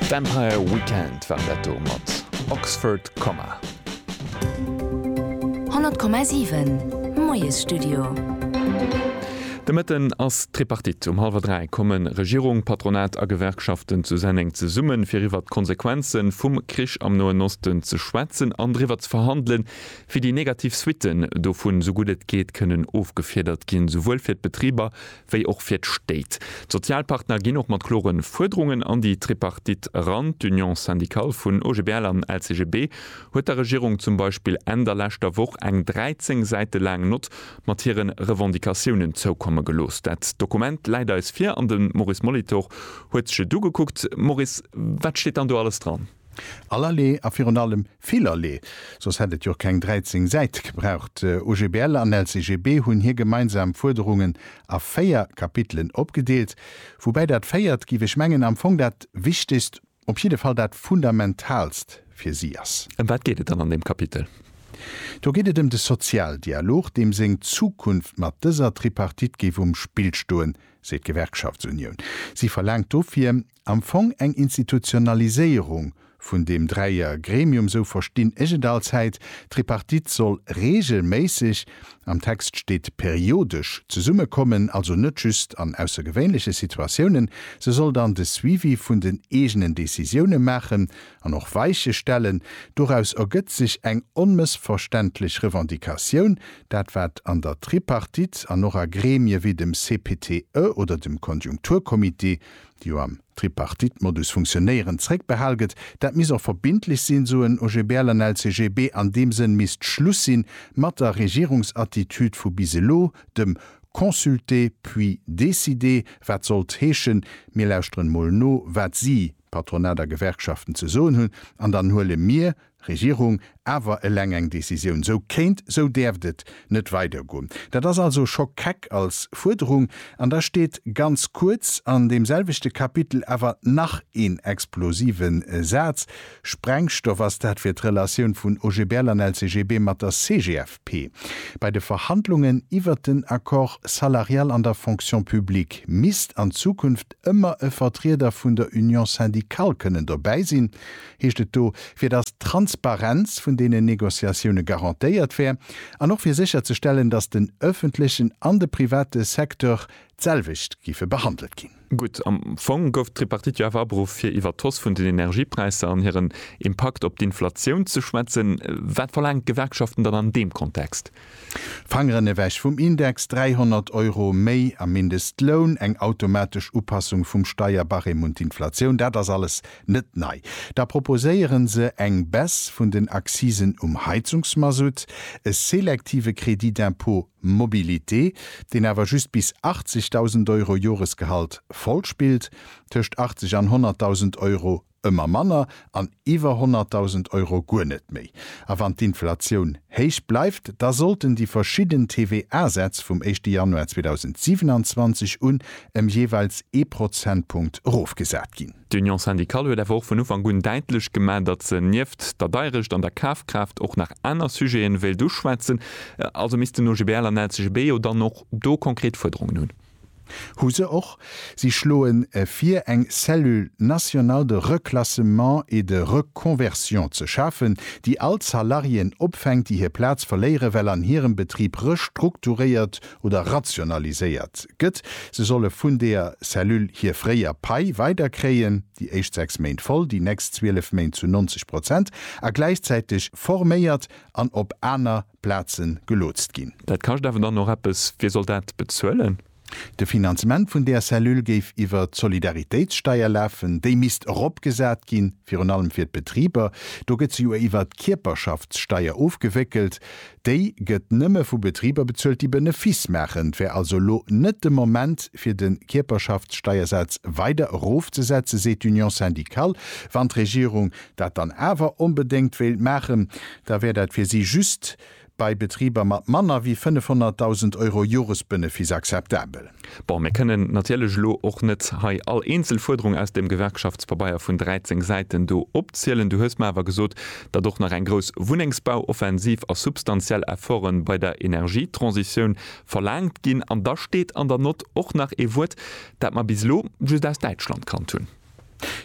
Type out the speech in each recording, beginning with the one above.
D'Empire Weekend waren dat do mat Oxford Comma. 100,7 Moiesstudio. De Mëtten ass d'Tripartite. Um hallwer 3 komme Regierung, Patronat a Gewerkschaften zu Senneng zesummen, fir iwwert d'Konsequenze vum Krich am Noen Osten ze schwätzen an driwwer ze verhandelen, wéi déi negativ Suitten dovun esou gutt et geet kënnen ofgefiedert ginn, souwuel fir d'Betriber wéi och fir d'Stéit. D'Sozialpartner ginn och mat klore Fuerderungen an déi Tripartite eran. D'Union syndicale vun OGBL an LCGB huet der Regierung zum Beispill Enn der leschter Woch eng 13 Säite laang Nott mat hire Revendicatiounen zoukomme gelooss. Dat Dokument läit eis vir an de Maurice Molitor huet sech et ugekuckt. Maurice, wat steet dann do alles dran? Allerlee a virun allem villerlee, soss hätt et jo keng 13 Säit gebraucht. OGBL an LCGB hunn hir gemeinsam Fuerderungen a véier Kapitelen opgedeelt, woubäi dat véiert, géif ech mengen, am Fong dat Wichtegst, op jidde Fall dat Fundamentalst fir si ass. Ëm wat geet et dann an deem Kapitel? Do geet et ëm de Sozialdialog, deem seng Zukunft mat dëser Tripartite géif um Spill stoen, seet d'Gewerkschaftsunioun. Si verlaangt dofir, am Fong eng Institutionaliséierung vun deem Dräier Gremium, sou verstinn ech et allzäit. D'Tripartite soll regelméisseg, am Text steet periodesch, zesumme kommen, also net just an aussergewéinleche Situatiounen. Se soll dann de Suivi vun den eegenen Decisioune maachen an och Weiche stellen. Doraus ergëtt sech eng onmëssverständlech Revendicatioun, dat wat an der Tripartite an och a Gremie wéi dem CPTE oder dem Konjunkturcomité, déi jo am Tripartite-Modus funktionéieren, zréckbehal gëtt. Dat misst och verbindlech sinn, soen OGBL an LCGB. An deem Sënn misst Schluss si mat der Regierungsattitüd vu bis elo, dem consulter puis décider, wat sollt heeschen, mir lauschteren emol no, wat si, Patronat a Gewerkschaften, ze soen hunn, an dann huele mir, Regierung, awer eleng eng Décisioun, sou kéint, sou däerft et net weidergoen. Dat ass also scho keck als Fuerderung. An da steet ganz kuerz an deem selwechte Kapitel awer nach een explosive Saz, Sprengstoff, ass dat fir d'Relatioun vun OGBL an LCGB mat der CGFP bei de Verhandlungen iwwert den Accord salarial an der Fonction publique misst an Zukunft ëmmer e Vertrieder vun der Union syndicale kënnen dobäi sinn. heescht et do, fir datt d'Transparenz vun deenen Négociatioune garantéiert wär an och fir sécher ze stellen, datt den öffentlechen an de private Secteur d'selwecht géife behandelt ginn. Gutt, am Fong gouf d'Tripartite jo awer aberuff, fir iwwert d'Hausse vun den Energiepräisser an hiren Impakt op d'Inflatioun ze schwätzen. Wat verlaangen d'Gewerkschaften dann an deem Kontext? Fangeren ewech vum Index, 300 Euro méi am Mindestloun, eng automatesch Upassung vum Steierbarème un d'Inflatioun, dat ass alles net nei. Da proposéieren se eng Baisse vun den Accisen um Heizungsmasutt, e selektive Crédit d'impôt mobilité, deen awer just bis 80.000 Euro Joresgehalt voll spillt, tëscht 80 an 100.000 Euro ëmmer manner an iwwer 100.000 Euro guer net méi. A wann d'Inflatioun héich bleift, da sollten déi verschidden TVA-Sätz vum éischte Januar 2027 un ëm jeeweils ee Prozentpunkt erofgesat ginn. D'Union syndicale huet awer och vun Ufank un däitlech gemaach, datt se nieft der Deierecht an der Kafkraaft och nach aner Sujete wéilt uschwätzen. Also misst den OGBL an LCGB jo dann och do konkret Fuerderungen hunn. Hu se och. Si schloen vir eng Cellule nationale de reclassement et de reconversion ze schafen, déi all Salariéen opfänkt, déi hir Plaz verléiere well an hirem Betrib restrukturéiert oder rationaliséiert gëtt. Se solle vun deer Cellule hir fréier Pai weider kréien, déi éischt 6 Méint voll, déi nächst 12 Méint zu 90 Prozent, a gläichzäiteg forméiert an op aner. Plaze gelootst ginn. Dat kascht awer dann och eppes. Wie soll dat bezuelen? De Finanzement vun där Cellule géif iwwer d'Solidaritéitssteier lafen. Déi misst eropgesat ginn, virun allem fir d'Betriber. Do gëtt se jo iwwer d'Kierperschaftssteier ofgewéckelt. Déi gëtt nëmme vu Betriber bezuelt, déi Benefiss maachen. Et wär also elo net de Moment, fir de Kierperschaftssteiersaz weider erofzesetzen, seet d'Union syndicale, wann d'Regierung dat dann awer onbedéngt wéilt maachen, da wär dat fir si just bei Betriber mat manner wéi 500.000 Euro Joresbenefiss akzeptabel. Bon, mir kënnen natierlech elo och net hei all eenzel Fuerderung aus deem Gewerkschaftspabeier vun 13 Säiten do opzielen. Du hues mer awer gesot, datt och nach eng grouss Wunnengsbauoffensiv a substantiell Efforten bei der Energietransitioun verlaangt ginn. An da steet an der Nott och nach ee Wuert, dat mer bis elo just aus Däitschland kannt hunn.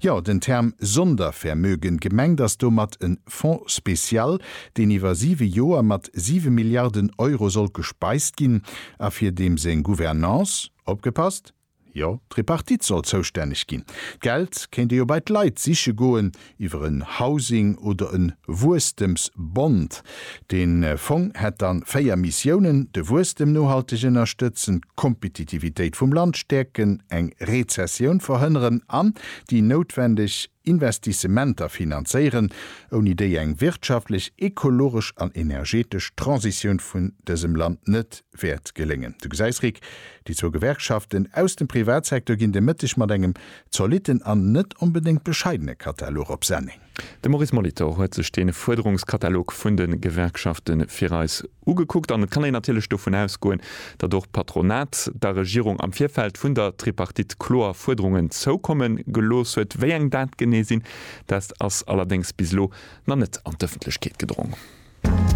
Jo, den Term Sondervermögen, gemengt ass domat en Fonds spécial, deen iwwer siwe Joer mat siwe Milliarden Euro sollt gespeist ginn a fir deem seng Gouvernance, opgepasst, jo, d'Tripartite soll zoustänneg ginn. D'Geld kéint ee jo bei d'Leit siche goen, iwwer en Housing oder en Wuesstems-Bond. Den Fong hätt dann 4 Missiounen, de Wuesstem nohalteg ënnerstëtzen, d'Kompetitivitéit vum Land stäerken, eng Rezessioun verhënneren an déi noutwendeg Investissementer finanzéieren, ouni déi eng wirtschaftlech, ekologesch an energetesch Transitioun vun dësem Land net wäert geléngen. Du gesäis, Rick, déi zwou Gewerkschaften aus dem Privatsektor ginn de Mëtteg mat engem Zolitten an net onbedéngt bescheidene Katalog op Senneng. De Maurice Molitor huet sech dee Fuerderungskatalog vun de Gewerkschafte fir eis ugekuckt an et kann een natierlech dovun ausgoen, datt och d'Patronat der Regierung am Virfeld vun der Tripartite kloer Fuerderungen zoukomme gelooss huet. Wéi eng dat genee sinn, dat ass allerdéngs bis elo nach net an d'Ëffentlechkeet gedrong.